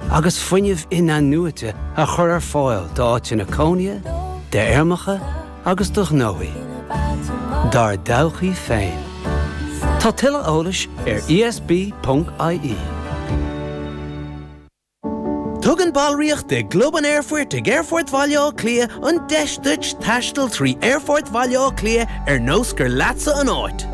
agus fuinneamh inathnuaite a chur ar fáil d'áiteanna cónaithe, d'fheirmeacha agus do ghnóthaí, dár dtodhchaí féin. Tá tuilleadh eolais ar ESB IE. Tugann ballraíocht i gClub an Aerfoirt ag Aerfort Bhaile Átha Cliath an deis duit taisteal trí Aerfort Bhaile Átha Cliath ar nós gur leatsa an áit.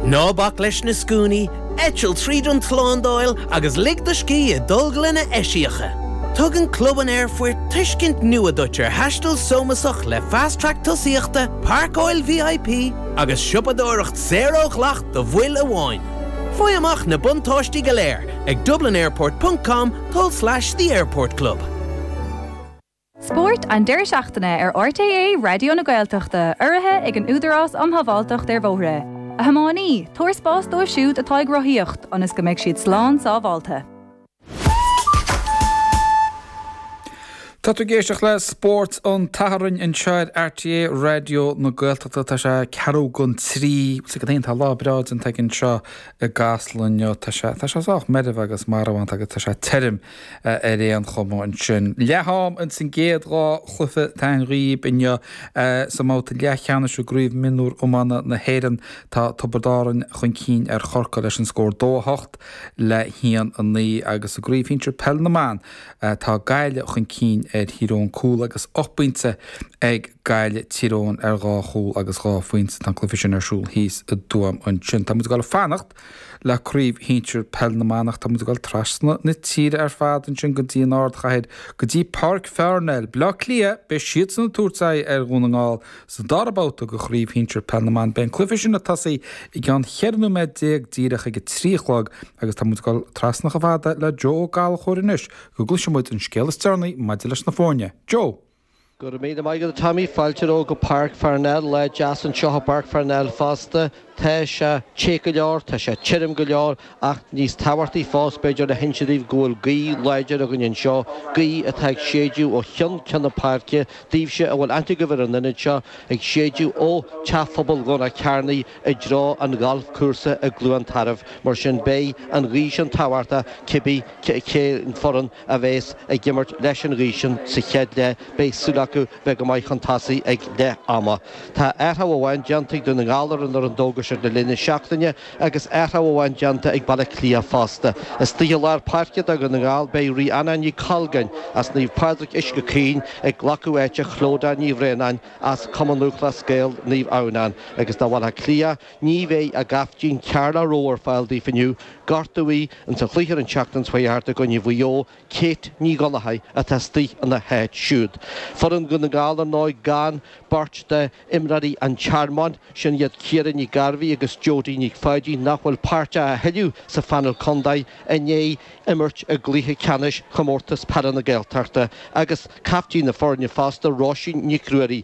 Ná bac leis na scuainí, Eitil tríd an tslándáil agus lig do scíth i dtolglanna eisiacha. Tugann Club an Aerfoirt tuiscint nua duit ar thaisteal sómasach le Fast Track tosaíochta, páirceáil VIP agus siopadóireacht saor ó dhleacht do bhaill amháin. Faigh amach na buntáistí go léir ag dublinairport.com tulslais the airport club. Spórt an deireadh seachtaine ar RTÉ Raidió na Gaeltachta, urraithe ag an Údarás um Shábháilteacht ar Bhóithre. A thiománaí, tabhair spás dóibh siúd atá ag rothaíocht ionas go mbeidh siad slán sábháilte. Tá tú ag éisteacht le Spórt an tSathairn anseo ar RTÉ Raidió na Gaeltachta. Tá sé ceathrú chun a trí. Bhuel, go deimhin tá lá breá déanta againn anseo i gCasla inniu. Tá sé sách meirbh agus marbhánta agus tá sé tirim. Ar aon chuma, ansin. Leath-am ins an gcéad dhá chluiche a thabhairt daoibh inniu sa mbabhta leathcheannais i gCraobh Mionúr Iomána na hÉireann, tá Tiobraid Árainn chun cinn ar Chorcaigh leis an scór 2 8 le 1 9, agus i gCraobh Shinsear Peil na mBan, tá Gaillimh chun cinn ar Thír Eoghain cúl agus ocht bpointe ag Gaillimh, Tír Eoghain ar dhá chúl agus dhá phointe. Tá an cluiche sin ar siúl thíos i dTuaim ansin. Tá muid ag dul ag fanacht. Le craobh shinsir Peil na mBan tá muid ag dul trasna na tíre ar fad, ansin go dtí an ardchathair, go dtí Páirc Pharnell, Baile Átha Cliath, beidh siadsan ag tabhairt aghaidh ar Dhún na nGall sa dara babhta de chraobh shinsir Peil na mBan. Beidh an cluiche sin ag tosú i gceann ceithre nóiméad déag díreach ag a trí a chlog agus tá muid ag dul trasna chomh fada le Joe Ó Gallchóir anois go gcloisfidh muid an scéal is deireanaí maidir leis na foirne. Joe! Go raibh míle maith agat, a Tommy. Fáilte romhat go Páirc Pharnell. Lá deas anseo i bPáirc Pharnell fosta. Tá sé te go leor, tá sé tirim go leor, ach níos tábhachtaí fós, b'fhéidir, le hinse daoibh go bhfuil gaoth láidir againn anseo, gaoth atá ag séideadh ó cheann ceann na páirce, daoibhse a bhfuil aithne agaibh ar an ionad seo, ag séideadh ó Teach Phobail Dhomhnach Cearnaigh i dtreo an ghalfchúrsa i gCluain Tarbh. Mar sin, beidh an ghaoth sin tábhachtach cibé cén foireann a bheas ag imirt leis an ghaoth sin sa chéad leath, beidh súil acu bheith go maith chun tosaigh ag leath ama. Tá athrá amháin déanta ag Dún na nGall ar an fhoireann a d'fhógair siad i rith na seachtaine agus athrá amháin déanta ag Baile Átha Cliath fosta. Istigh i lár páirce do Dhún na nGall beidh Ríona Nic Colgáin as Naomh Pádraig Uisce Chaoin ag glacadh áite Chlodagh Ní Bhraonáin as Cumann Lúthchleas Gael Naomh Adhamhnáin agus do Bhaile Átha Cliath Ní bheidh a gcaiftín Carla Rowe ar fáil daofa inniu, gortaíodh í ins an chluiche ar an tseachtain seo thart i gcoinne Mhaigh Eo, Kate Ní Dhonnchadha atá istigh ina háit siúd. Foireann Dhún na nGall ar ndóigh gan beirt de imreoirí an Tearmainn, sin iad Ciara Nic Gairbheith agus Jodie Nic Pháidín nach bhfuil páirteach a thuilleadh sa phainéal contae, i ndiaidh imirt i gcluiche ceannais Chomórtas Peile na Gaeltachta, agus caiftín na foirne fosta, Róisín Nic Ruairí.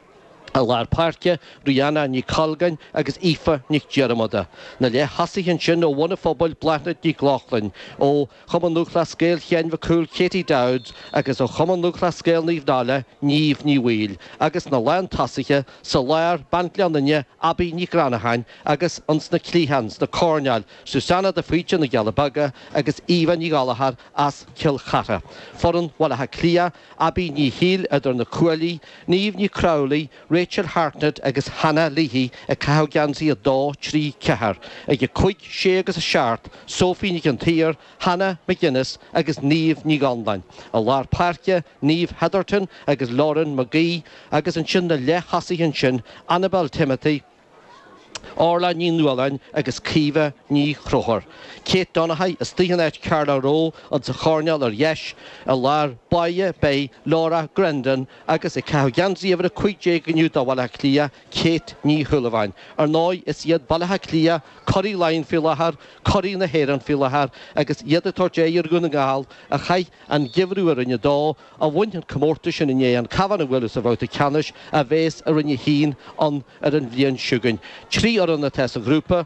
I lár páirce, Rianna Nic Colgáin agus Aoife Nic Dhiarmada, na leath-thosaithe ansin ó Bhun a Phobail, Bláthnaid Nic Lochlainn, ó Chumann Lúthchleas Gael Sheáin Mhic Cumhaill, Katie Dowds, agus ó Chumann Lúthchleas Gael Naomh Náille, Niamh Ní Bhaoill, agus na lán-tosaithe sa lár, bean Ghleann Fhinne, Abbie Nic Reannacháin, agus ins na cliatháin, sna coirnéil, Susanne de Faoite na gCealla Beaga agus Eva Ní Ghallchóir as Cill Chartha. Foireann Bhaile Átha Cliath. Abby Ní Shiail, idir na cuaillí, Niamh Ní Crowley, Rachel Hartnett agus Hannah Leahy ag caitheamh geansaí 2, 3, 4, ag a cúig, sé agus a seacht, Sophie Nic an tSaoir, Hannah McGinnis agus Niamh Ní Dhonláin, i lár páirce, Niamh Hetherton agus Lauren Magee agus ansin na leath-thosaithe ansin, Annabel Timothy, Orla Ní Nualláin agus Caoimhe Ní Chonchúir, Kate Donaghy istigh in áit Carla Rowe ins an choirnéal ar dheis, i lár báire beidh Laura Grandin agus ag caitheamh geansaí uimhir 15 inniu do Bhaile Átha Cliath, Kate Ní Shúilleabháin. Ar ndóigh is iad Baile Átha Cliath curaí Laighean faoi láthair, curaí na hÉireann faoi láthair agus iad ag tabhairt aghaidh ar Dhún na nGall a chaith an geimhreadh i Roinn a Dó a bhain an comórtas sin i ndiaidh an Cabhán a bhualadh sa bhabhta ceannais a bheas i Roinn a hAon an ar an bhliain seo chugainn. Trí fhoireann atá sa ghrúpa,